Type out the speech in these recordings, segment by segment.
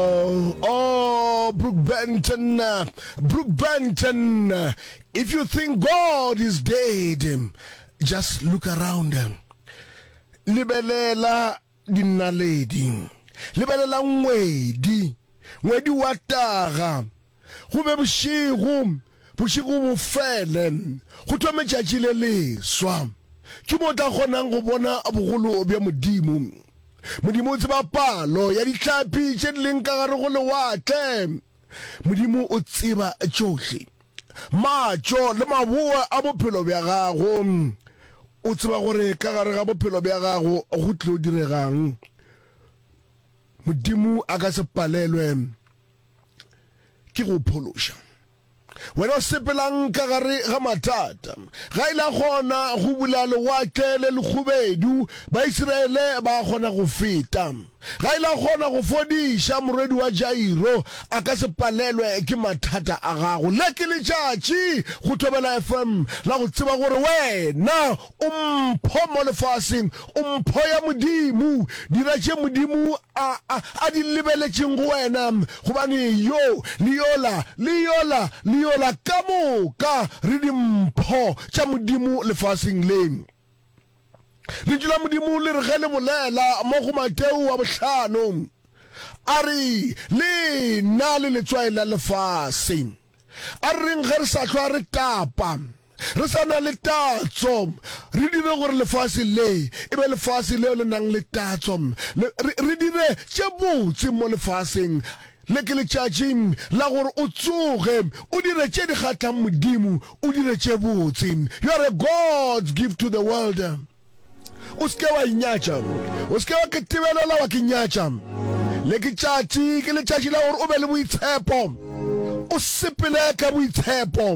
Oh, Brooke Benton, Brooke Benton, if you think God is dead, just look around. Lebelela dinaledi. Lebelela ngwedi. Ngwedi wa taga. Go be bošego, bošego bo fele, go thome tšatši le leswa. Ke mo o tla kgonang go bona bogolo bja Modimo. Modimo o tseba palo ya dihlapi tše di leng ka gare go lewatle. Modimo o tseba tšohle, matšo le maboa a bophelo bja gago. O tseba gore ka gare ga bophelo bja gago go tlilo direga'ng. Modimo a ka se palelwe. ke go phološa wena o sepelang ka gare ga mathata ga ile a kgona go bula lewatle le lekgubedu baisiraele ba kgona go feta ga ile a kgona go fodiša morwedi wa jairo a ka se palelwe ke mathata a gago le ke letšatši go thobela fm la go tseba gore wena O mpho mo lefaseng, o mpho ya Modimo. Dira tše Modimo a, a, a di lebeletšeng go wena, gobane yo, le yola, le yola, le yola ka moka re dimpho tša Modimo lefaseng le. Lentšu la Modimo le re ge le bolela mo go Mateo wa bohlano, A re, Le na le letswai la lefase. A reng ge re sa hlwa re tapa, re sa na le tatso, re dire gore lefase le e be lefase leo le nang le tatso, le, re, re dire tše botse mo lefaseng le. Ke letšatši la gore o tsoge, o dire tše di kgathlang Modimo, o dire tše botse. You are a God, give to the world. O se ke wa inyatša, o se ke wa ke tibelela wa ke nyatša. Le ke tšatši, ke letšatši la gore o be le boitshepo, o sepele ka boitshepo.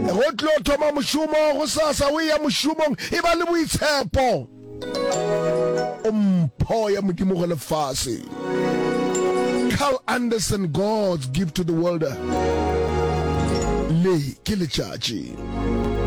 Go tlo thoma mošomo go sasa, o eya mošomong, e ba le boitshepo. O mpho ya Modimo go lefase. Carl Anderson, God's Gift to the World. Le ke letšatši.